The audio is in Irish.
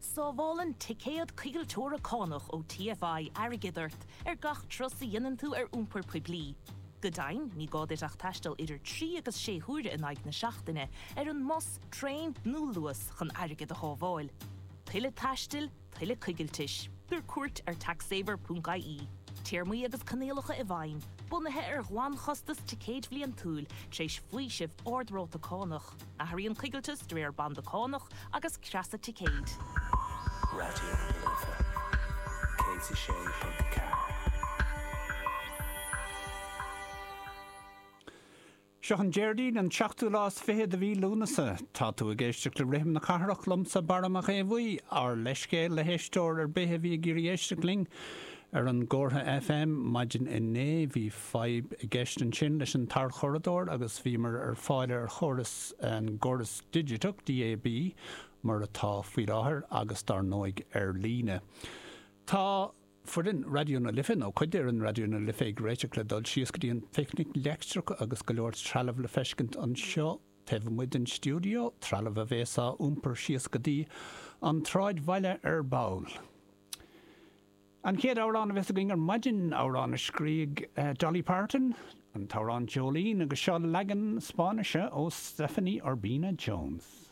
Sábhálann ticéad coigilteora cánach ó TFI airgead ort ar gach turas a dhéanann tú ar iompar poiblí. Go deimhin, ní gá duit ach taisteal idir trí agus sé huaire in aghaidh na seachtaine ar an mbus, traein nó Luas chun airgead a shábháil. Tuilleadh taistil, tuilleadh coigiltis. Tabhair cuairt ar taxsaver.ie. Téarmaí agus coinníollacha i bhfeidhm, bunaithe ar ghlanchostas ticéid bhliantúil, tar éis faoiseamh ard-ráta cánach. Athraíonn coigilteas de réir banda cánach agus creasa ticéid. Raidió na Life 106.4. Seo an Déardaoin an seachtú lá is fiche de mhí Lúnasa. Tá tú ag éisteacht le Rithim na Cathrach liomsa, Barra Mac Aodha Bhuí. Ár leithscéal le héisteoir ar bith a bhí ag iarraidh éisteacht linn ar an gcomhartha FM maidin inné. Bhí. fadhb i gceist ansin leis an tarchuradóir agus bhíomar ar fáil ar chóras an gcóras digiteach, DAB, mar atá faoi láthair agus dar ndóigh ar líne. Tá foireann Raidió na Life, nó cuid d'fhoireann Raidió na Life ag réiteach le dul síos go dtí an Picnic Leictreach agus go leor trealamh le feiscint anseo taobh amuigh den stiúideo, trealamh a bhéas á iompar síos go dtí an tSráidbhaile ar ball. An chéad amhrán a bheas againn ar maidin, amhrán a scrígh Dolly Parton, an t-amhrán Jolene, agus seo leagan Spáinnise ó Stephanie Urbina Jones.